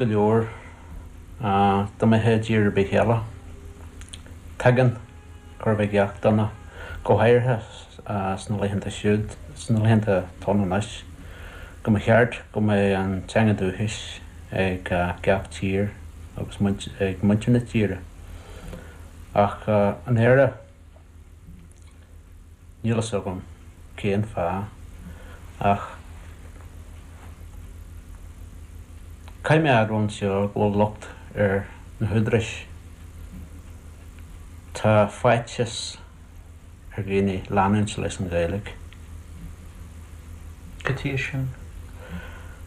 go leor dá mbeifeá i dtír ar bith eile. Tuigeann gach aon duine, go háirithe sna laethanta siúd, sna laethanta atá ann anois, go mba cheart go mbeadh an teanga dúchais ag gach tír agus ag muintir na tíre. Ach in Éire. Níl fhios agam cén fáth ach caithfidh mé a admháil anseo go bhfuil locht ar na húdaráis. Tá faitíos ar dhaoine leanúint leis an Ghaeilge. Cad chuige sin?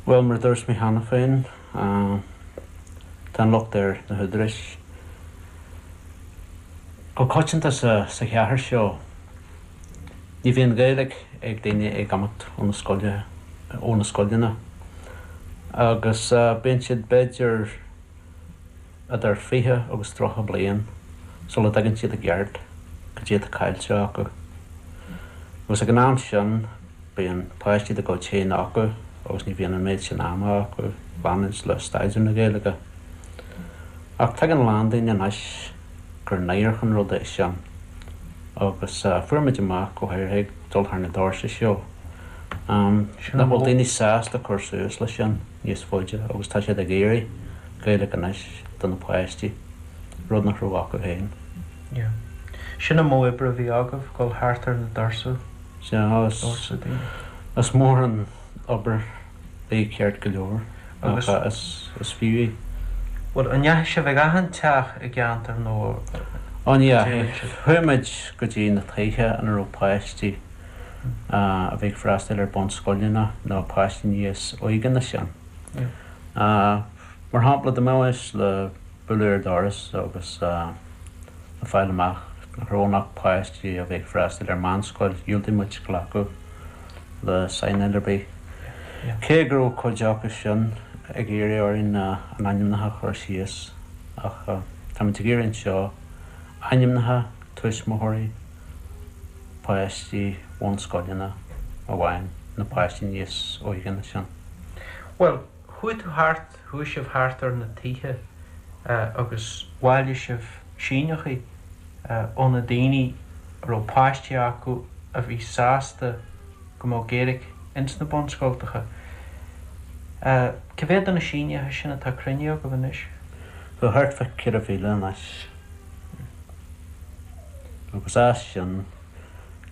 Bhuel, mar a dúirt mé cheana féin. Tá an locht ar na húdaráis go coitianta sa chathair seo. Ní bhíonn Gaeilge ag daoine ag imeacht ó na scoile, ó na scoileanna, agus bíonn siad b'fhéidir. idir fiche agus tríocha bliain sula dtuigeann siad i gceart caidé atá caillte acu. Agus ag an am sin bíonn páistí dá gcuid féin acu agus ní bhíonn an méid sin ama acu leanúint le staidéar na Gaeilge. Ach tuigeann a lán daoine anois gur náireach an rud é sin agus fuair muid amach go háirithe ag dul thar na doirse seo nach bhfuil daoine sásta cur suas leis sin. níos faide agus tá siad ag iarraidh Gaeilge anois do na páistí, rud nach raibh acu féin. Yeah. Sin é an modh oibre a bhí agaibh, dul thart ar na dorsa, doirse daoine. Is mór an obair í ceart go leor ach is fiú í. Bhuel, an ndeachaigh sibh chuig achan teach i gceantar nó a dtéann sibh? Ó ní dheachaigh. Chuaigh muid go dtí na tithe ina raibh páistí. a bhí ag freastail ar bunscoileanna nó páistí níos óige ná sin. Mar shampla, dá mbeimis le bualadh ar dhoras agus le fáil amach nach raibh ann ach páistí a bhí ag freastail ar mheánscoil, dhiúltaigh muid glacadh le saighneáil ar bith, cé go raibh cuid acu sin ag iarraidh orainn a n-ainmneacha a chur síos. Ach táimid ag iarraidh anseo ainmneacha tuismitheoirí. páistí bhunscoileanna amháin, nó páistí níos óige ná sin. Bhuel, chuaigh tú thart, chuaigh sibh thart ar na tithe agus bhailigh sibh síneachaí ó na daoine a raibh páistí acu a bhí sásta go mbeadh Gaeilig ins na bunscoltacha. Cé mhéad de na sínithe sin atá cruinnithe agaibh anois? Tá thart fá ceithre mhíle anois. agus as sin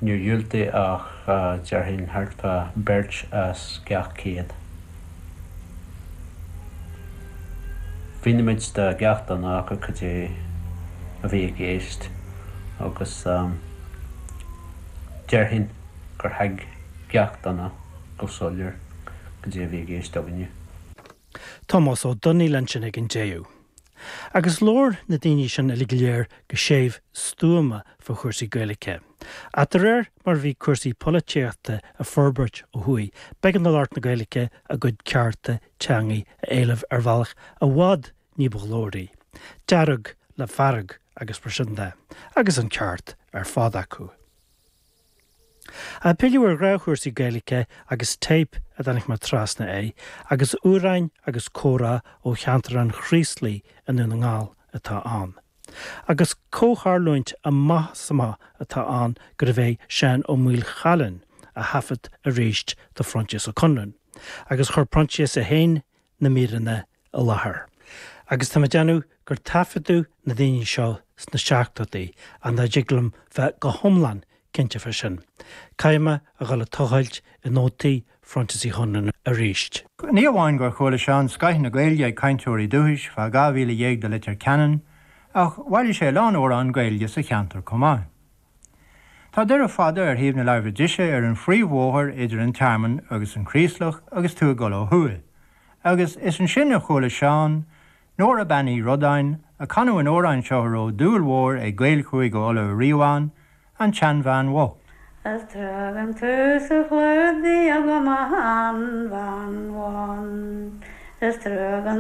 níor dhiúltaigh ach déarfainn thart fá beirt as gach céad. Mhínimid do gach duine acu cad é a bhí i gceist agus déarfainn gur thuig gach duine go soiléir cad é a bhí i gceist againne. Tomás Ó Domhnaill ansin ag an deireadh. Agus labhair na daoine sin uilig go léir go séimh stuama fá chúrsaí Gaeilge. Ach de réir mar a bhí cúrsaí polaitíochta ag forbairt ó thuaidh, b'éigean do lucht na Gaeilge a gcuid cearta teangaidh a éileamh ar bhealach i bhfad ní ba ghlóraí, dearg le fearg agus mar sin de, agus an ceart ar fad acu. Ag pilleadh ar ghraithe, cúrsaí Gaeilice agus téip a dtáinig mé trasna air agus amhráin agus comhrá ó cheantar an Chraoslaigh i nDún na nGall atá ann. Agus comhtharlúint amach is amach atá ann gurbh é Seán Ó Maoilchiaráin a thaifead arís do Phroinsias Ó Conluain agus chuir Proinsias é féin na míreanna i láthair agus tá mé ag déanamh gur taifeadadh na daoine seo sna seachtóidí ach ní thig liom bheith go hiomlán cinnte fá sin. Caithfidh mé a dhul ag tochailt i nótaí Phroinsias Uí Chonluain arís. Ní amháin gur chuala Seán scoth na Gaeilge ag cainteoirí dúchais fá dhá mhíle dhéag de Leitir Ceanainn ach bhailigh sé a lán amhrán Gaeilge sa cheantar chomh maith. Tá Doire Fada ar thaobh na láimhe deise ar an phríomhbhóthar idir an Tearmann agus an Craoslach agus tú ag dul ó thuaidh, agus is ansin a chuala Seán, Nóra Bean Uí Rodáin, ag canadh an amhráin seo a raibh dúil mhór ag Gaeil Chúige Uladh ariamh ann, An tSeanbhean Bhocht. Is tagann tú sa chlúdaigh agam a sheanbhean bhán, is tagann